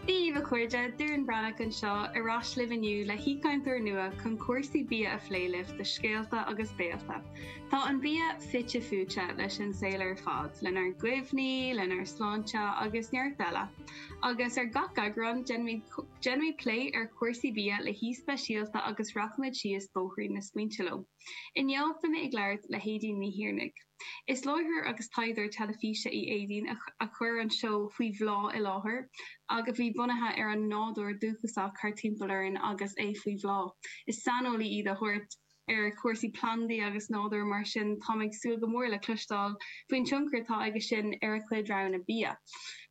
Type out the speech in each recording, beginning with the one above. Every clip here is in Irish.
Dia dhaoibh a chairde, Doireann Breathnach anseo, ar ais libh inniu le haoichainteoir nua chun cúrsaí bia a phlé libh do Scéalta agus Béalta. Tá an bia fite fuaite leis an saol ar fad, lenár gcuimhní, lenár sláinte agus neart eile. Agus ar gach eagrán, déanaimid plé ar chúrsaí bia le haoi speisialta agus rachaimid síos bóithrín na smaointe leo. Inniu, beidh mé ag labhairt le hAedín Ní Thiarnaigh. Is láithreoir agus taighdeoir teilifíse í Aedín a chuir an seó Faoi Bhláth i láthair, a bhí bunaithe ar an nádúr dúchasach thart timpeall orainn agus é faoi bhláth. Is saineolaí í de shórt ar chúrsaí plandaí agus nádúir, mar sin táim ag súil go mór le cloisteáil faoin tionchar atá aige sin ar a cuid roghanna bia.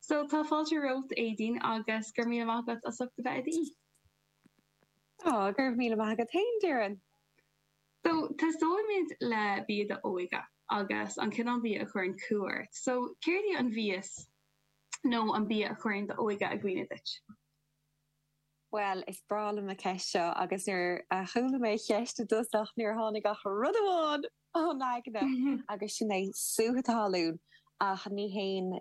So, tá fáilte romhat, Aedín, agus go raibh míle maith agat as ucht a bheith i d'aoi. Go raibh míle maith agat féin, a Dhoireann. So, tosóimid le bia d'óige agus an cineál bia a chuireann cumha ort. So, céard í an mhias nó an bia a chuireann d'óige i gcuimhne duit? Bhuel, is breá liom an cheist seo agus nuair a chuala mé an cheist i dtosach níor tháinig ach rud amháin i'm aigne agus sin é sútha talún ach ní haon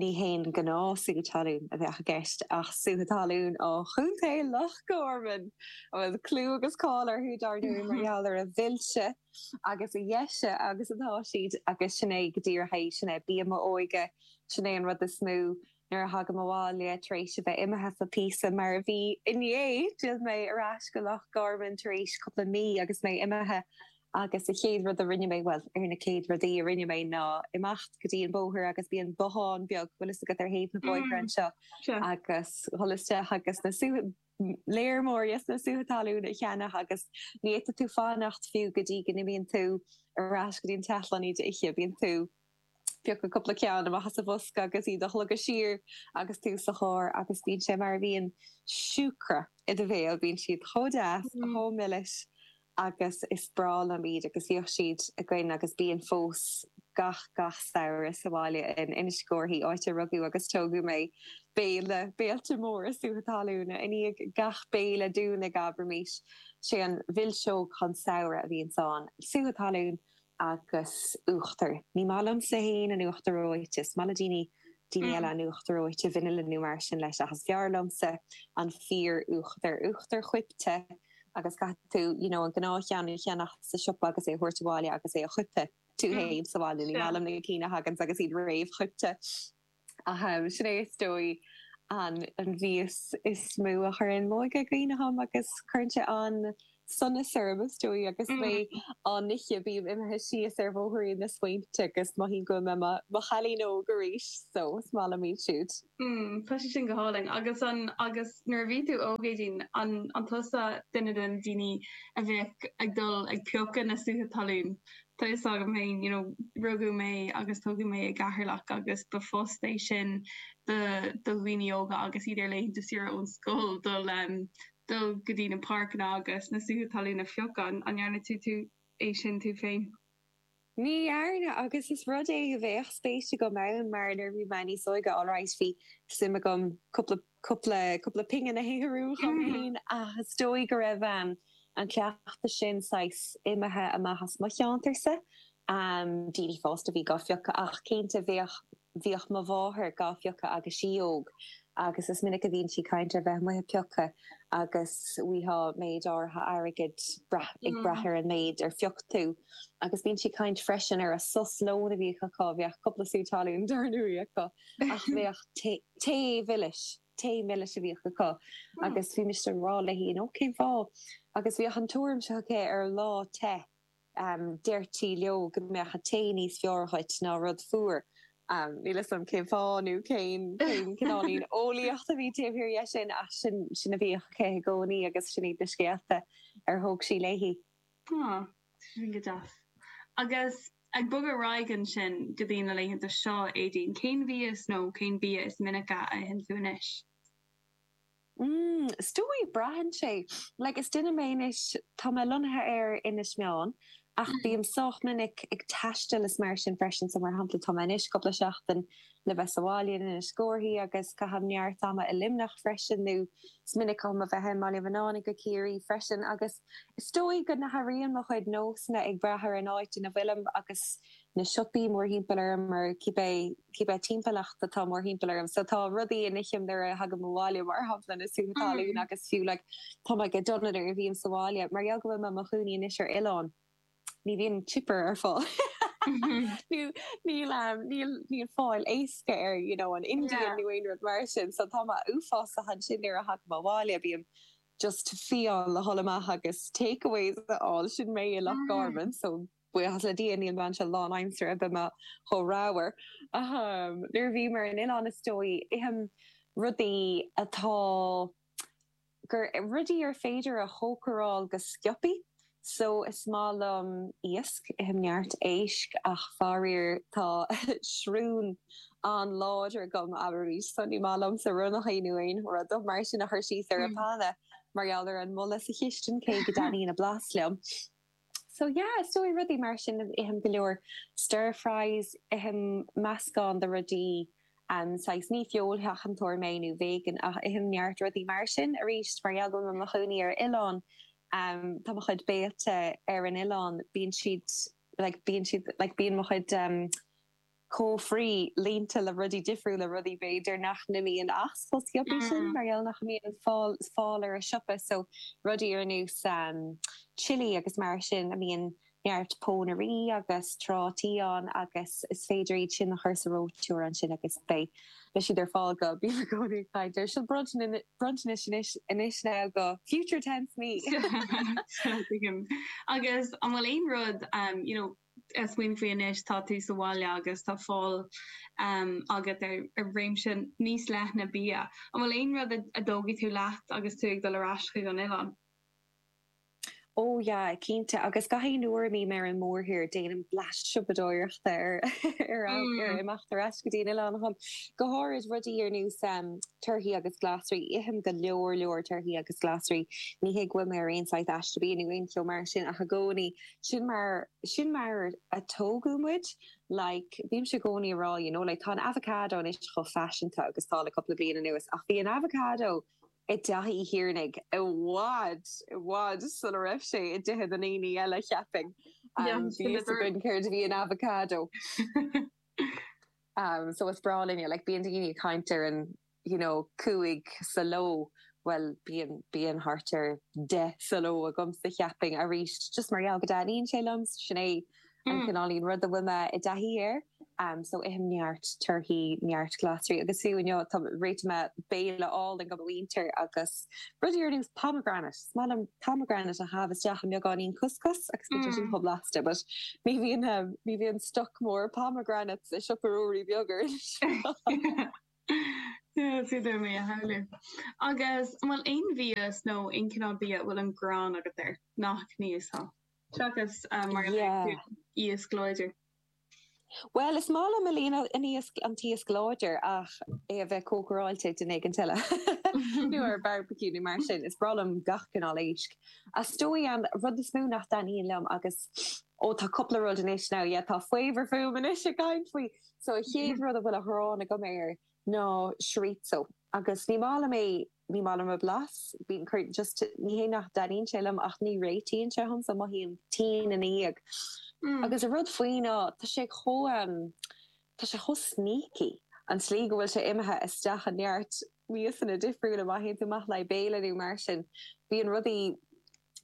Ní haon ghnáthsútha talún a bheadh i gceist ach sútha talún ó Chontae Loch Garman a bhfuil clú agus cáil orthu, dar ndóigh, mar gheall ar a mhilse agus a dheise agus atá siad. Agus sin é go díreach é. Sin é bia m'óige. Sin é an rud is mó nuair a thagaim abhaile tar éis a bheith imithe le píosa, mar a bhí inné. D'fhill mé ar ais go Loch Garman tar éis cúpla mí agus mé imithe. Agus an chéad rud a rinne mé, bhuel, ar na céad rudaí a rinne mé ná imeacht go dtí an bóthar agus bíonn bothán beag, bhfuil fhios agat, ar thaobh na bóithre anseo, agus dhul isteach agus na, léar mór dos na sútha talún a cheannach agus ní fhéadfadh tú fanacht fiú go dtí go n-imíonn tú ar ais go dtí an teach len iad a ithe, bíonn tú. ag piocadh cúpla ceann amach as an bhosca agus iad a shlogadh siar agus tú sa charr agus bíonn sé mar a bhíonn siúcra i do bhéal, bíonn siad chomh deas, chomh milis agus is breá liom iad agus bhíodh siad againn agus bíonn fós gach, gach samhradh sa bhaile in Inis Córthaidh, áit ar rugadh agus tógadh mé, béile, béilte móra sútha talúna. I ndiaidh gach béile dúinn abraimis, sé an mhilseog an tsamhraidh a bhíonns ann, sútha talún. agus uachtar. Ní maith liomsa fhéin an uachtar reoite, is maith le daoine, daoine eile an uachtar reoite, vanilla nó mar sin leis ach is fearr liomsa an fíor uachtar, uachtar coipthe agus caithfidh tú you know an gnáthcheann a cheannach sa siopa agus é a thabhairt abhaile agus é a choipeadh tú fhéin sa bhaile, ní maith liom na cinn a thaganns agus iad réamhchoipthe. Sin é is dóigh an mhias is mó a chuireann m'óige i gcuimhne dhom agus cuireann sé an-sonas orm, is dóigh, agus mé á n-ithe. Bím imithe síos ar bhóithrín na smaointe agus mothaím go bhfuil mé i mo chailín óg arís, so is maith liom iad siúd. Tá sé sin go hálainn. Agus an, agus nuair a bhí tú óg, Éadaoin, an, an tusa duine de na daoine a bheadh ag dul ag piocadh na sútha talún? Tá fhios agam féin, you know, rugadh mé agus tógadh mé i gCeatharlach agus ba phost é sin do, do dhaoine óga agus iad ar laethanta saoire ón scoil, dul, em, dul go dtí na páirceanna agus na sútha talún a phiocadh. An ndearna tú, tú é sin tú féin? Ní dhearna agus is rud é a bheadh spéis agam ann mar nuair a bhí mé níos óige, alright, bhí suim agam cúpla cúpla, cúpla pingin a shaothrú dhom fhéin ach is dóigh go raibh an cleachtadh sin saghas imithe amach as mo cheantar-sa. Daoine fásta a bhí dhá bpiocadh ach cinnte bheadh, bhíodh mo mháthair dhá bpiocadh agus í óg agus is minic a bhíonn sí ag caint ar bheith amuigh ag piocadh agus bhíodh méid áirithe airgid, ag brath ar an méid ar phioc tú agus bíonn sí ag caint freisin ar an sos lóin a bhíodh acu, bheadh cúpla sú talún dar ndóigh acu ach bheadh tae, Tae mhilis, tae milis a bhíodh acu agus bhí mise ag rá léi, you know, cén fáth? Agus bhíodh an tuairim seo aici, ar lá te, deirtí leo go mbeadh an tae níos fearr dhuit ná rud fuar. Níl 'fhios a'm cén fáth nó cén cineáilín eolaíocht a bhí taobh thiar dhe sin ach sin, sin a bhíodh aici i gcónaí agus sin iad na scéalta ar thóg sí léi. Huh. Sin go deas. Agus ag bogadh ar aghaidh ansin go dtí na laethanta seo, Éadaoin, cén mhias nó cén bia is minice a itheann tú anois? Mm, is dóigh, braitheann sé. Like, is duine mé anois, tá mé lonnaithe ar Inis Meáin ach bím sách minic ag taisteal is mar sin freisin. So, mar shampla, tá mé anois cúpla seachtain le bheith sa bhaile in Inis Córthaidh agus caithim neart ama i Luimneach freisin, nó is minic dhom a bheith i mBaile Bhuinneánaigh i gCiarraí freisin, agus is dóigh go n-athraíonn mo chuid nósanna ag brath ar an áit ina bhfuilim agus na siopaí mórthimpeall orm nó cibé cibé timpeallacht atá mórthimpeall orm so tá rudaí a n-ithim nuair a thagaim abhaile mar shampla na sútha talún agus fiú like tá mé go dona nuair a bhím sa bhaile mar gheall go bhfuil mé i mo chónaí anois ar oileán ní bhíonn chipper ar fáil nó níl um, níl, níl fáil éasca ar you know, an Indian yeah. nó aon rud mar sin, so tá mé uafásach ansin nuair a thagaim abhaile, bím just to fiáin le dhul amach agus takeaways a fháil, sin mé i Loch Garman, so buíochas le Dia níl mé anseo lánaimseartha, bheadh mé chomh ramhar. Um, nuair a bhím ar an oileán is dóigh, ithim rudaí atá gur rudaí ar féidir a chócaráil go sciobthaí so is maith liom iasc, ithim neart éisc ach faraor tá srón an-láidir agam abair arís so ní maith liomsa ronnachaí nó aon rud mar sin a chur síos ar an bpanna mar gheall ar an mboladh sa chistin cé go dtaitníonn a blas liom. So yeah, so rudaí mar sin, ithim go leor stir fries, ithim meascán de rudaí, em, saghas, ní feoilsheachantóir mé nó vegan ach ithim neart rudaí mar sin, aríst, mar gheall go bhfuil mé i mo chónaí ar oileán, em, tá mo chuid béilte ar an oileán, bíonn siad, like, bíonn siad, like, bíonn mo chuid, em, cófraí, líonta le rudaí difriúla, rudaí b'fhéidir nach n-imíonn as chomh sciobthaí sin mar gheall nach mbíonn fáil ar an siopa so rudaí ar nós chilli agus mar sin a mbíonn neart pónairí agus trátaí ann agus is féidir iad sin a chur sa reoiteoir ansin agus beidh siad ar fáil go bím i gcónaí ag caint air sin bronntanais anois now do future tense me! Tuigim. Agus an bhfuil aon rud, you know, ag smaoineamh faoi anois, tá tú sa bhaile agus tá fáil agat ar réimse níos leithne bia. An bhfuil aon rud a dtógfaidh tú leat agus tú ag dul ar ais chuig an oileán? Ó, yeah, cinnte. Agus gach aon uair a mbím ar an mórthír, déanaim bleaist siopadóireachta ar imeacht ar ais go dtí an oileán. Go háirid, rudaí ar nós torthaí agus glasraí. Ithim go leor leor torthaí agus glasraí. Ní hé go bhfuil mé ar aon saghas aiste bia nó aon cheo mar sin ach i gcónaí Sin mar, sin mar a tógadh muid. Like, bímse i gcónaí a' rá, you know, like, tá an avocado anois chomh faiseanta agus tá le cúpla bliain anuas ach bhí an avocado i dteach Uí Thiarnaigh i bhfad, i bhfad sula raibh sé i dtithe na ndaoine eile, cheapfainn. Yeah, um, bhí a fhios againn céard a bhí an avocado. um, so is breá linne, like, bíonn daoine ag caint ar an you know, cúig sa ló, bhuel, bíonn, bíonn thart ar deich sa ló agamsa, cheapfainn, arís, just mar gheall go dtaitníonn sé liom, sin é an cineáilín rud a bhfuil mé i dtaithí air, ehm, so ithim neart torthaí, neart glasraí, agus fiú inniu, tá, réitigh mé béile álainn do mo mhuintir, agus rudaí ar nós pomegranate, is maith liom pomegranate a chaitheamh isteach i mbeagáinín cuscus, agus bíonn sé sin chomh blasta, but ní bhíonn, ehm, ní bhíonn stoc mór pomegranates i siopa Ruairí Beag ar Inis Oírr. Is féidir liom é a shamhlú. Agus an bhfuil aon mhias nó aon chineál bia a bhfuil an ghráin agat air? Nach n-íosfá. Seachas mar a Yeah. luaigh tú, iasc láidir. Bhuel, is maith liom a líon an iasc, an t-iasc láidir ach é a bheith cócaráilte ag duine éigint eile. Nó ar barbecue nó mar sin. Is breá liom gach cineál éisc. Is dóigh an rud is mó nach dtaitníonn liom agus, ó, tá cúpla rud anois now, yeah, tá faobhar fúm anois ag caint faoi So a chéad rud a bhfuil an ghráin agam air ná chorizo agus ní maith liom é, ní maith liom an blas, bíonn, just ní hé nach dtaitníonn sé liom ach ní réitíonn sé dhomsa, mothaím tinn ina dhiaidh. Agus an rud faoi ná tá sé chomh, tá sé chomh sneaky, an tslí go bhfuil sé imithe isteach i neart miasanna difriúla, má théann tú amach le haghaidh béile nó mar sin, bíonn rudaí,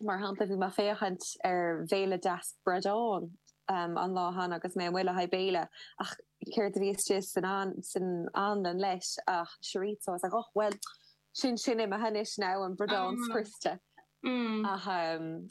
Mar shampla, bhí mé ag féachaint ar bhéile deas bradáin an lá cheana agus mé amuigh le haghaidh béile ach céard a bhí istigh san anlann leis ach chorizo. I was like, och, bhuel, sin sin imithe anois now, an bradán scriosta.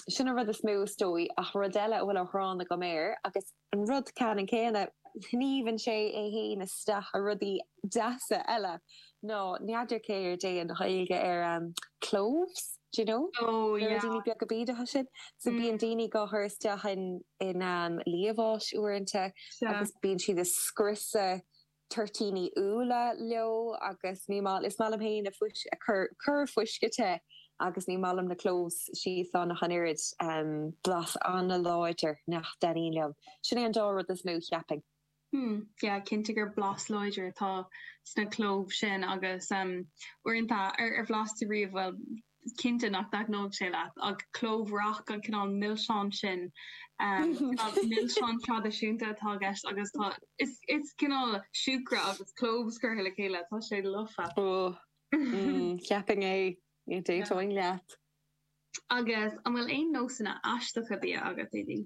Sin an rud is mó is dóigh ach rud eile a bhfuil an ghráin agam air agus an rud ceanann céanna, sníomhann sé é fhéin isteach i rudaí deasa eile, ná n'fheadar céard é an Ghaeilge ar cloves, d'you know? na ruidíní beaga bídeacha sin, so bíonn daoine dhá chur isteach in liamháis uaireanta agus bíonn siad ag scriosadh. toirtíní úlla leo agus ní maith, is maith liom féin an corrfhuisce te agus ní maith liom na cloves síos ann ach an oiread. Blas an-láidir, nach dtaitníonn liom. Sin é an dá rud is mó, cheapfainn. Hmm, yeah, cinnte gur blas láidir atá sna cloves sin agus uaireanta, ar bhlas tú riamh, bhuel, is cinnte nach dtaitneoidh sé leat, ach clove rock, an cineál milseáin sin, cineál milseáin traidisiúnta atá i gceist agus tá, is, is cineál siúcra agus cloves curtha le chéile, tá sé lofa. Ó, cheapfainn é, ní d'aontóinn leat. Agus an bhfuil aon nósanna aisteacha bia agat, Éadaoin?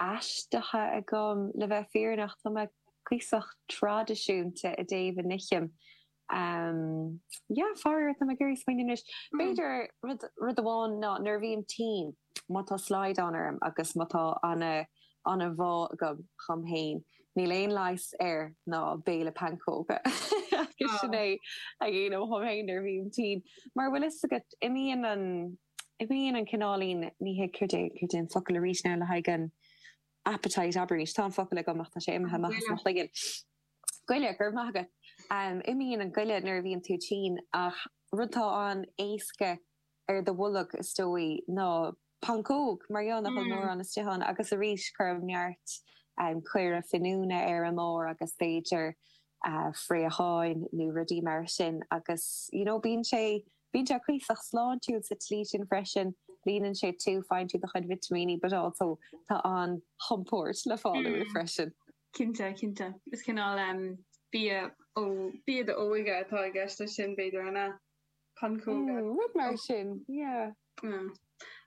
aisteacha agam, le bheith fírinneach. Tá mé cuíosach traidisiúnta i dtaobh a n-ithim. Yeah, faraor, tá mé ag iarraidh smaoineamh anois. B'fhéidir, rud, rud amháin ná nuair a bhím tinn, má tá slaghdán orm agus má tá ana, ana bhá agam dhom fhéin, níl aon leigheas air ná béile pancóg. Agus sin é a dhéanaim dhom fhéin nuair a bhím tinn. Mar an bhfuil fhios agat, imíonn an. Imíonn an cineáilín ní hea céard é, céard é an focal arís now le haghaidh an appetite arís. Tá an focal agam ach tá sé imithe amach as mo chloigeann. Goile, go raibh maith agat. Um, imíonn an goile nuair a bhíonn tú tinn ach rud atá an-éasca ar do bholg, is dóigh, ná pancóga mar gheall nach bhfuil mórán istigh iontu agus arís cuirim neart caora finiúna ar an mbarr agus b'fhéidir fraocháin nó rudaí mar sin agus, you know, bíonn sé Bíonn sé cuíosach sláintiúil sa tslí sin freisin, líonann sé tú, faigheann tú do chuid vitimíní but also tá an chompord le fáil uaidh freisin. Cinnte, cinnte. Is cineál bia ó bia d'óige atá i gceist leis sin, b'fhéidir, an ea? Pancóga? Mm, rud mar sin, yeah. Mm.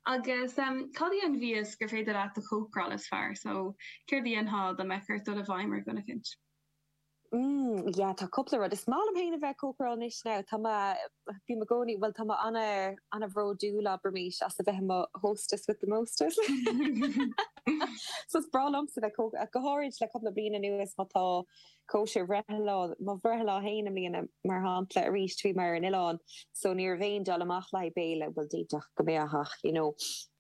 Agus cad é an bia is gur féidir leat a chócaráil is fearr? So, céard a dhéanfá dá mbeadh ort dul i bhfeidhm ar dhuine éicint? Mm, yeah, tá cúpla rud. Is maith liom féin a bheith cócaráil anois now. Tá mé, bím i gcónaí, bhuel tá mé ana, ana bhródúil abraimis as a bheith i mo hostess with the mostess. so is breá liomsa bheith cóc, go háirid le cúpla bliain anuas má tá cóisir bhreithlá, mo bhreithlá féin i mbliana mar shampla arís bhí mé ar an oileán, so ní raibh mé ag dul amach le haghaidh béile, bhuel d'fhéadfadh go mbeadh ach, you know,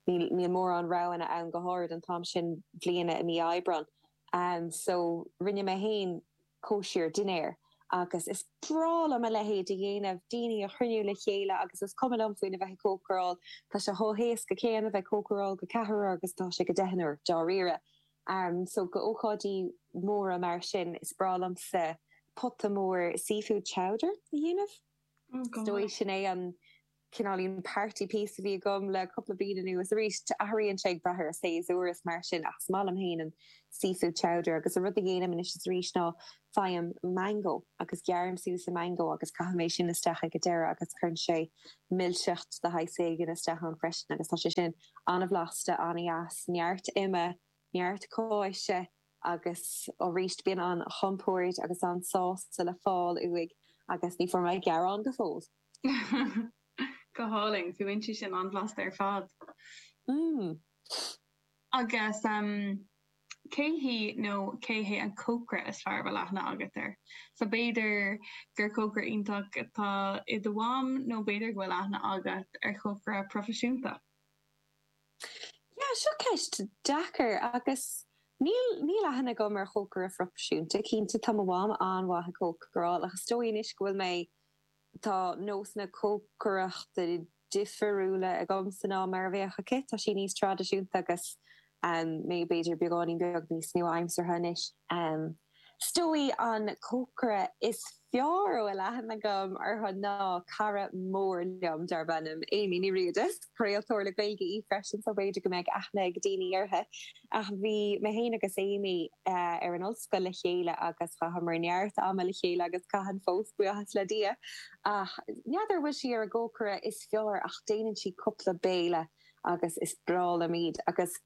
níl, níl mórán roghanna ann go háirid an t-am sin bliana i mí Aibreán. and so rinne mé féin cóisir dinnéir agus is breá liom a leithéid a dhéanamh, daoine a chruinniú le chéile agus is cuma liom faoina bheith ag cócaráil, tá sé chomh héasca céanna a bheith ag cócaráil do cheathrar agus atá sé do dheichniúr, dáiríre. So do ócáidí móra mar sin, is breá liomsa pota mór seafood chowder a dhéanamh, is dóigh sin é an. cineáilín party piece a bhí agam le cúpla bliain anuas. Arís, athraíonn sé ag brath ar an séasúr is mar sin ach is maith liom féin an seafood chowder agus an rud a dhéanaim anois arís ná faighim mango agus gearraim suas an mango agus caithim é sin isteach ag a deireadh agus cuireann sé milseacht de shaghas éigin isteach ann freisin agus tá sé sin an-bhlasta, an-dheas, neart ime, neart cáise agus arís bíonn an chompoird agus an sásta le fáil uaidh agus ní bhfuair mé gearán go fóill! Go hálainn. Fuaimníonn sé sin an-bhlasta ar fad. Agus cé hí nó cé hé an cócaire is fearr a bhfuil aithne agat air? So b'fhéidir gur cócaire iontach atá i do mham nó b'fhéidir go bhfuil aithne agat ar chócaire proifisiúnta. Yeah, seo ceist deacair agus níl, níl aithne agam ar chócaire proifisiúnta. Cinnte tá mo mham an-mhaith ag cócaráil ach is dóigh anois go bhfuil mé, Tá nósanna cócaireachta difiriúla agamsa ná mar a bheadh aici, tá sí níos traidisiúnta agus mé b'fhéidir beagáinín beag níos nua-aimseartha anois. Is dóigh an cócaire is fearr a bhfuil aithne agam orthu ná cara mór liom darb ainm Amy Ní Riada. Is craoltóir le Gaeilge í freisin so b'fhéidir go mbeidh aithne ag daoine uirthi. Ach bhí mé féin agus Amy ar an ollscoil le chéile agus chaitheamar neart ama le chéile agus caithim fós, buíochas le Dia. Ach ní fheadar an bhfuil sí ar an gcócaire is fearr ach déanann sí cúpla béile agus is breá liom iad. Agus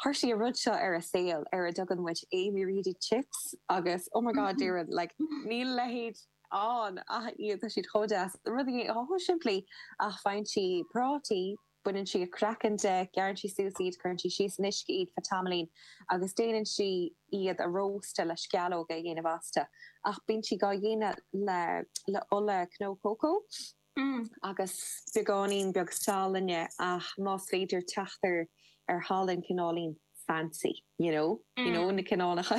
chuir sí an rud seo ar a' saol ar a dtugann muid Amy Reedy Chips agus oh my god déarfainn like níl a leithéid ann ach iad tá siad chomh deas. Rudaí chomh simplí ach faigheann sí prátaí, baineann sí an craiceann de, gearrann sí suas iad, cuireann sí síos in uisce iad faoi tamaillín agus déanann sí iad a róstadh le sceallóga a dhéanamh astu. Ach bíonn sí á dhéanamh le le ola cnó cócó agus beagáinín beag salainne ach más féidir teacht ar ar shalann cineáilín fancy you know you know na cineálacha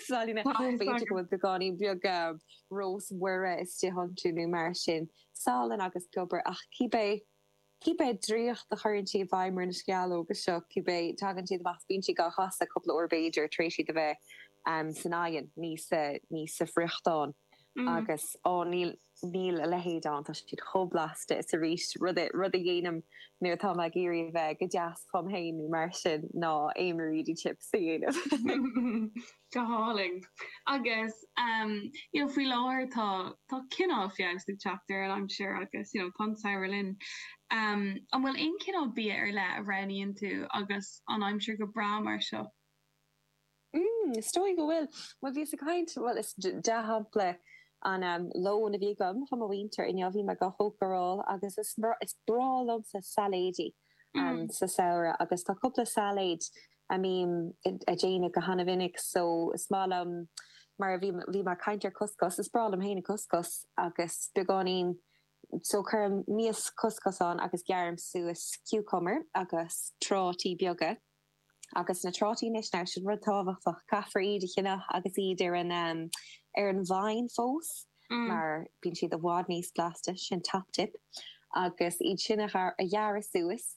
salainne b'fhéidir go bhfuil beagáinín beag rosemary istigh iontu nó mar sin. Salann agus piobar ach cibé. Cibé draíocht a chuireann sí i bhfeidhm ar na sceallóga seo, cibé, tagann siad amach is bíonn sí á gcasadh cúpla uair b'fhéidir tar éis iad a bheith san oigheann, níos, ní sa bhfriochtán. Agus, á, ní, níl a leithéid ann, tá siad chomh blasta is arís, rud a dhéanaim nuair atá mé ag iarraidh a bheith go deas chugam féin nó mar sin ná Amy Reedy chips a dhéanamh. Go hálainn. Agus you know faoi láthair tá tá cineál feabhas ag teacht ar an aimsir agus you know tá an samhradh linn. An bhfuil aon cineál bia ar leith a roghnaíonn tú agus an aimsir go breá mar seo? Mm is dóigh go bhfuil. Bhuel bhíos ag caint bhuel is dea-shampla an lón a bhí agam chun mo mhuintire inniu bhí mé ag cócaráil agus is is breá liomsa sailéidí sa samhradh agus tá cúpla sailéid a mbím a' déanamh go hana-mhinic so is maith liom mar a bhí, bhí mé a' caint ar couscous, is breá liom féin an couscous agus beagáinín, so cuirim mias couscous ann agus gearraim suas cucumber agus trátaí beaga agus na trátaí anois now sin rud tábhachtach, caithfear iad a cheannach agus iad ar an, ar an vine fós mar bíonn siad i bhfad níos blasta, sin top tip agus iad sin a ghearradh suas,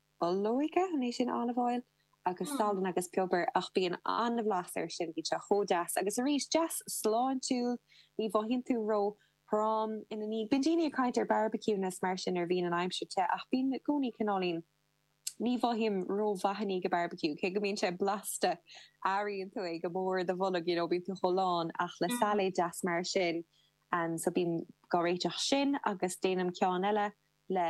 Ola olóige, an é sin olive oil? agus salann agus piobar ach bíonn an-bhlas air sin, bíonn sé chomh deas agus arís, deas sláintiúil, ní mhothaíonn tú ró, throm ina ndiaidh. Bíonn daoine ag caint ar barbecuing is mar sin nuair a bhíonn an aimsir te ach bíonn i gcónaí cineáilín, ní mhothaím rómhaith i ndiaidh an barbecue cé go mbíonn sé blasta, airíonn tú é go mór i do bholg you know, bíonn tú chomh lán ach le sailéad deas mar sin, so bím gá réiteach sin agus déanaim ceann eile le.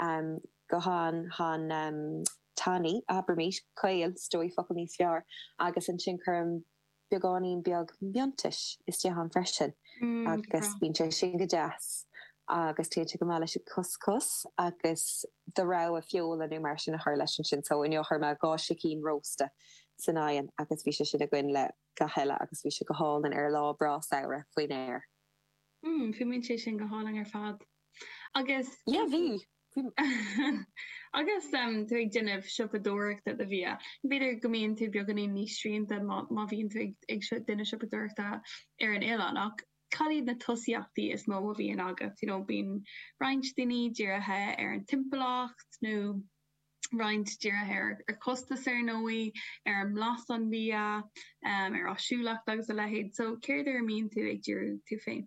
um go han, han, um tanaí, abraimid, caol, is dóigh, focal níos fearr, agus ansin cuirim beagáinín beag miontais istigh ann freisin agus bíonn sé sin go deas agus téann sé go maith leis an gcuscus agus do rogha feola nó mar sin a chur leis ansin. So inniu chuir mé dhá sicín rósta san oigheann agus bhí sé sin againn le gach uile agus bhí sé go hálainn ar lá breá samhraidh faoin aer. Mm, Fuaimíonn sé sin go hálainn ar fad. Agus Yeah, bhí. Agus tú ag déanamh siopadóireachta do bhia, b'fhéidir go mbíonn tú beagáinín níos srianta má má bhíonn tú ag ag seo- déanamh siopadóireachta ar an oileán ach cad iad na tosaíochtaí is mó a bhíonn agat? You know, bíonn roinnt daoine dírithe ar an timpeallacht nó roinnt dírithe ar ar chostas ar ndóigh, ar an mblas an bhia, ar áisiúlacht agus a leithéid. So céard ar a mbíonn tú ag díriú tú féin?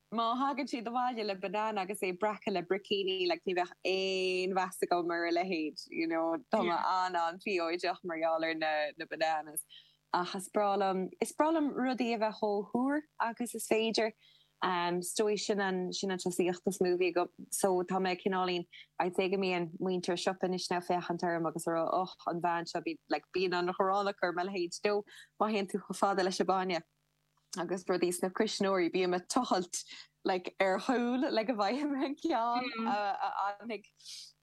Má thagann siad abhaile le banana agus é breactha le breicní like ní bheadh aon mheas agam ar a leithéid you know tá mé an- an-phiocúil mar gheall ar na na bananas ach is breá liom is breá liom rudaí a bheith chomh úr agus is féidir um is dóigh sin an sin an tosaíocht is mó a bhíonn agam so tá mé cineáilín I'd say go mbíonn muintir siopa an Ois ag féachaint orm agus ag rá och an bhean seo bíonn like bíonn an ghráin acu ar mo leithéid you know má théim chomh fada leis an bainne. agus rudaí sna cuisneoirí bíonn mé ag tochailt like ar chúl le go bhfaighim an ceann a fhanfaidh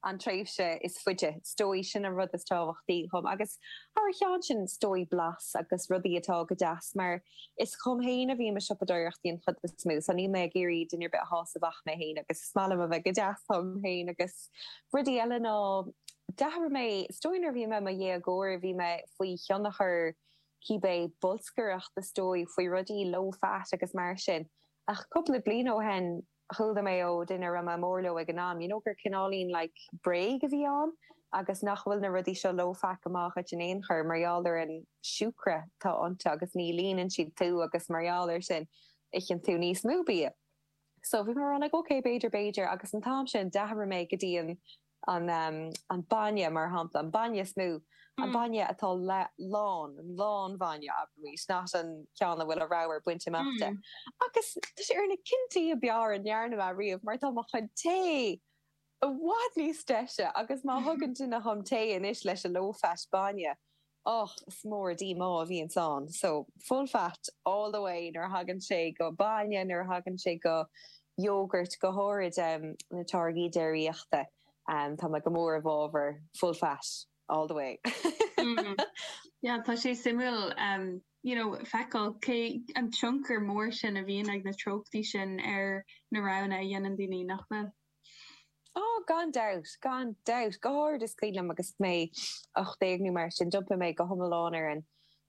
an tréimhse is faide. Is dóigh sin an rud is tábhachtaí dhom agus thar a chionn sin is dóigh blas agus rudaí atá go deas mar is dhom féin a bhíonn mé ag siopadóireacht an chuid is mó so níl mé ag iarraidh duine ar bith a shásamh ach mé féin agus is maith liom a bheith go deas dhom féin agus rudaí eile a ndeachaigh mé. Is dóigh nuair a bhí mé i mo dhéagóir bhí mé faoi thionchar cibé bolscaireacht is dóigh faoi rudaí low fat agus mar sin ach cúpla bliain ó shin chuala mé ó dhuine a raibh mé mór leo ag an am you know gur cineáilín like bréag a bhí ann agus nach bhfuil na rudaí seo low fat go maith dhuit in aon chor mar gheall ar an siúcra atá iontu agus ní líonann siad tú agus mar gheall ar sin itheann tú níos mó bia so bhí mé like ok b'fhéidir b'fhéidir agus an t-am sin d'athraigh mé go dtí an an bainne, mar shampla, an bainne is mó, an bainne atá lán, an lán bhainne, abraimid, not an ceann a bhfuil an ramhar bainte amach de. Ach is, tá sé ar na cinntí ab fhearr a ndearna mé riamh, mar tá mo chuid tae i bhfad níos deise agus má thugann duine dhom tae anois leis an low fat bainne, Och, is mór an díomá a bhíonns ann so, full fat all the way nuair a thagann sé go bainne, nuair a thagann sé go yogurt, go háirid na táirgí déiríochta. Tá mé go mór i bhfábhar full fat all the way. Yeah, tá sé suimiúil you know feiceáil cé an tionchar mór sin a bhíonn ag na treochtaí sin ar na roghanna a dhéanann daoine, nach bhfuil? Oh, gan dabht, gan dabht, go háirid is cuimhin liom agus mé 18 nó mar sin, d'iompaigh mé go hiomlán ar an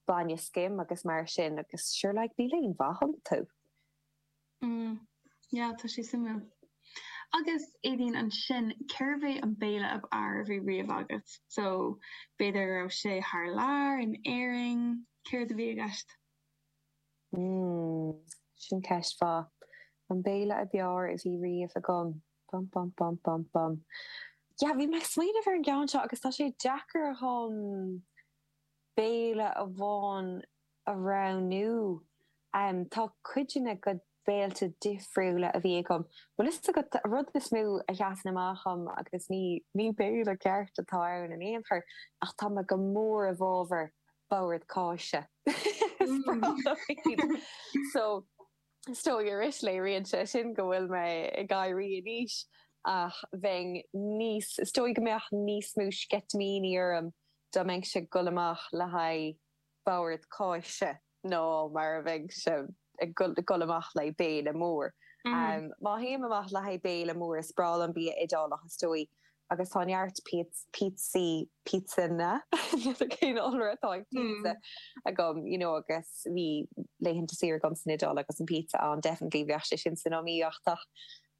bainne scim agus mar sin agus sure like níl aon mhaith iontu. Mm, yeah, tá sé suimiúil. Agus, Aideen, ansin, cérbh é an béile ab fhearr a bhí riamh agat? So, b'fhéidir go raibh sé thar lear, in Éirinn, céard a bhí i gceist? Mmm, sin ceist mhaith. An béile ab fhearr a bhí riamh agam. bum bum bum bum bum. Yeah, bhí mé ag smaoineamh ar an gceann seo agus tá sé deacair dhom béile amháin a roghnú. Am tá cuid de na béilte difriúla a bhí agam, bhfuil a fhios agat, an rud is mó a sheasann amach dhom agus ní ní béile ceart atá ann in aon chor ach tá mé go mór i bhfábhar bord cáise. so is dóigh arís léiríonn sé sin go bhfuil mé ag éirí in aois ach bheinn níos is dóigh go mbeadh níos mó sceitimíní orm dá mbeinnse ag dul amach le haghaidh bord cáise ná mar a bheinnse ag dul amach le haghaidh béile mór. Má théim amach le haghaidh béile mór is breá liom bia Iodálach is dóigh agus tá neart píotsaí, píotsanna, níl cén iolra atá ag pizza, agam, you know agus bhí laethanta saoire agam san Iodáil agus an pizza ann definitely bheadh sé sin san iomaíocht ach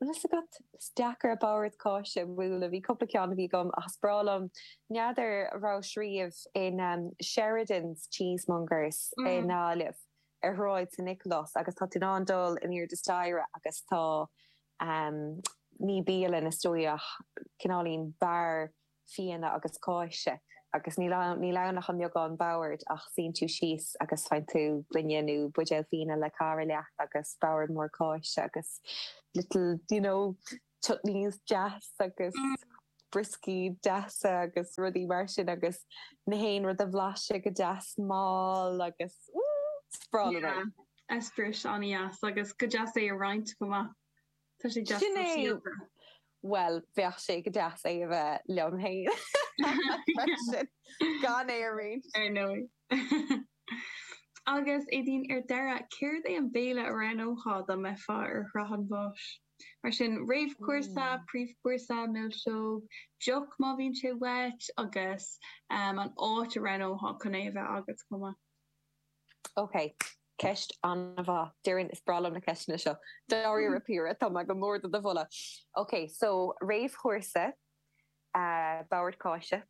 an bhfuil 's agat, is deacair an bord cáise a bhualadh, bhí cúpla ceann a bhí agam ach is breá liom, n'fheadar a rabhais riamh in Sheridans Cheesemongers i nGaillimh? ar Shráid San Nioclás agus tá tú in ann dul in airde staighre agus tá ní bialann is dóigh ach cineáilín beár fíona agus cáise agus níl ann níl ann ach an mbeagán bord ach suíonn tú síos agus faigheann tú bainne nó buidéal fíona le cara leat agus bord mór cáise agus little you know chutneys deas agus brioscaí deasa agus rudaí mar sin agus gach aon rud a bhlaiseadh go deas mall agus is breá liom yeah. Eispéireas an-deas agus go deas é a roinnt go maith. Tá sé deas go sóisialta. Well, bheadh sé go deas é a bheith liom féin. Gan é a roinnt. Ar ndóigh. Agus Aideen ar deireadh, céard é an béile a roghnófá dá mbeifeá ar shraith an bháis? mar sin, réamhchúrsa, príomhchúrsa, milseog, deoch má bhíonn sé uait agus an áit a roghnófá chun é a bheith agat chomh maith. Ok, ceist ana-mhaith. Déarfainn, is breá liom na ceisteanna seo. Dáiríre píre, tá mé go mór do do mholadh. Ok, so réamhchúrsa, bord cáise,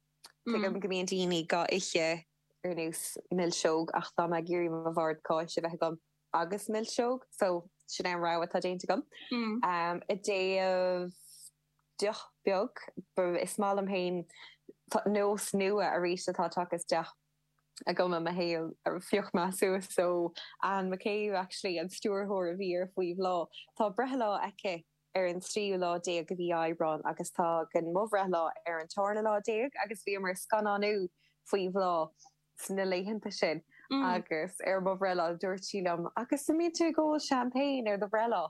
tuigim go mbíonn daoine dhá ithe ar nós milseog ach tá mé ag iarraidh mo bhord cáise a bheith agam. agus milseog, so sin é an rogha atá déanta agam. I dtaobh deoch beag, is maith liom féin nós nua arís atá tagtha isteach agam i mo shaol, fiche bliain suas, so Anne McCabe actually an stiúrthóir a bhí ar Faoi Bhláth, tá breithlá aici ar an tríú lá déag de mhí Aibreáin agus tá agam mo bhreithlá ar an tárna lá déag agus bhíomar ag scannánú Faoi Bhláth sna laethanta sin agus ar mo bhreithlá dúirt sí liom Agus an mbíonn tú ag ól champagne ar do bhreithlá?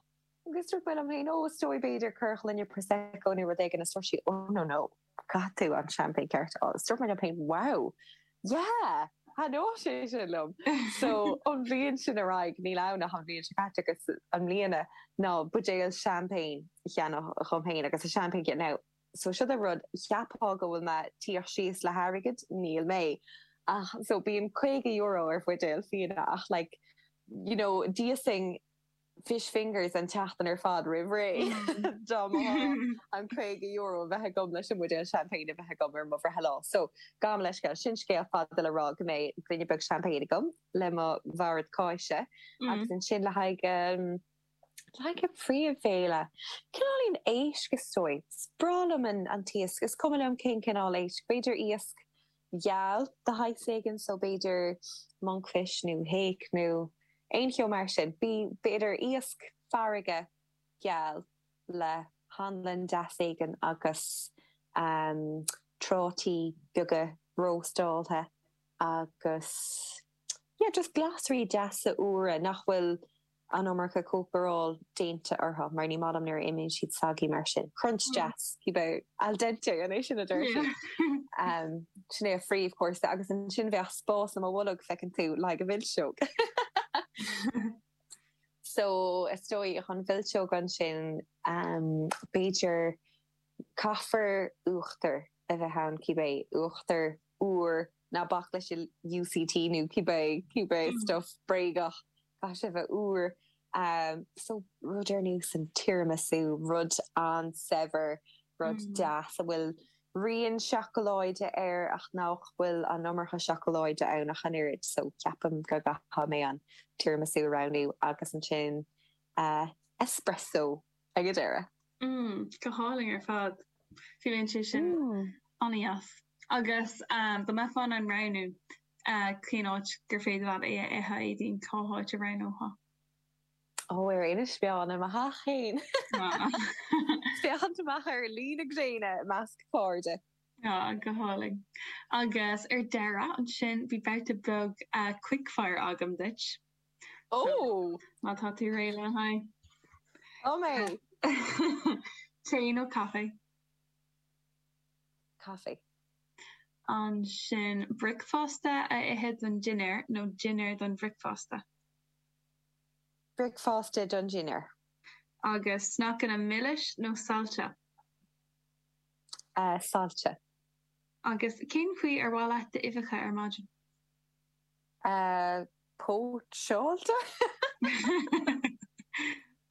Agus dúirt mé liom féin Ó is dóigh, b'fhéidir corrghloine Prosecco nó rud éigin is dúirt sí Ó no no, caithfidh tú an champagne ceart a fháil. Is dúirt mé liom féin Wow, yeah! Thaitneodh sé sin liom. So ón bhliain sin ar aghaidh, níl ann ach an bhliain seo caite agus i mbliana, ná buidéal champagne a cheannach dhom féin agus an champagne anois, so siod é an rud cheapfá go bhfuil mé ag tíocht síos le hairgead níl mé ach so bíonn caoga euro ar bhuidéal fíona ach like you know d'íosfainn fish fingers an tseachtain ar fad roimh ré dá mba an caoga euro a bheith agam leis an mbuidéal champagne a bheith agam ar mo bhreithlá so gabh mo leithscéal sin scéal fada le rá go mbeidh gloine beag champagne agam le mo bhord cáise agus ansin le haghaidh um, Le haghaidh príomhbhéile. Cineál éigin éisc is dóigh. Is breá liom an t-iasc, is cuma liom cén cineál éisc. B'fhéidir iasc geal de shaghas éigin, so b'fhéidir monkfish nó hake nó aon cheo mar sin. B'fhéidir iasc farraige geal le hanlann deas éigin agus prátaí beaga róstáltha agus yeah just glasraí deasa úra nach bhfuil an iomarca cócaireacht déanta orthu, mar ní maith liom nuair a imíonn siad soggy mar sin, crunch deas, cibé, al dente, an é sin a deir siad? sin é an príomhchúrsa, agus ansin bheadh spás i mo bholg, feiceann tú, le haghaidh milseog. so, is dóigh, chun mhilseog ansin, b'fhéidir Caithfear uachtar a bheith ann cibé, uachtar úr, ná bac leis an UHT nó cibé, cibé stuif bréagach, caithfidh sé a bheith úr. So, rud ar nós an tiramisu, rud an-saibhir, rud deas a bhfuil rian seacláide air ach nach bhfuil an iomarca seacláide ann ach an oiread. So, ceapaim go gcaithfidh mé an tiramisu a roghnú agus ansin espresso. ag an deireadh. mm go hálainn ar fad fuaimeann sé sin ana-dheas agus dá mbeifeá in ann roghnú cén áit gur féidir leat é a ithe, Éadaoin, cá háit a roghnófá? ó ar Inis Meáin i mo theach féin féachaint amach ar luí na gréine i measc cairde. ah go hálainn agus ar deireadh ansin beidh babhta beag quick fire agam duit. Oh! Má tá tú réidh le haghaidh. Oh mé! Tae nó caife? Caife. Ansin, bricfeasta a ithe don dinnéar nó dinnéar don bhricfeasta? Bricfeasta don dinnéar. Agus sneaiceanna milis nó sailte? Sailte. Agus cén chaoi ar mhaith leat d'uibheacha ar maidin? póitseáilte.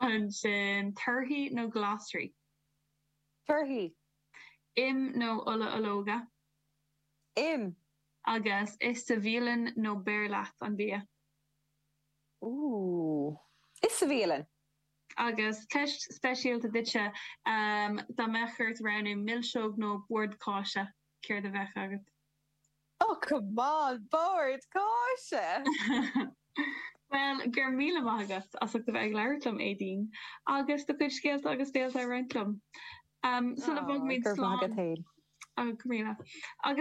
Ansin, torthaí nó glasraí? Torthaí. Im nó ola ológa? Im. Agus ith sa bhialann nó beir leat an bia? Ooh. Ith sa bhialann. Agus ceist speisialta duitse, dá mbeadh ort roghnú, milseog nó bord cáise, céard a bheadh agat? Oh come on, bord cáise! Bhuel, go raibh míle maith agat as ucht a bheith ag labhairt liom, Éadaoin, agus do chuid scéalta agus d'eolas a roinnt liom. Um, sula bhfágaimid slán. Agus go míle. Agus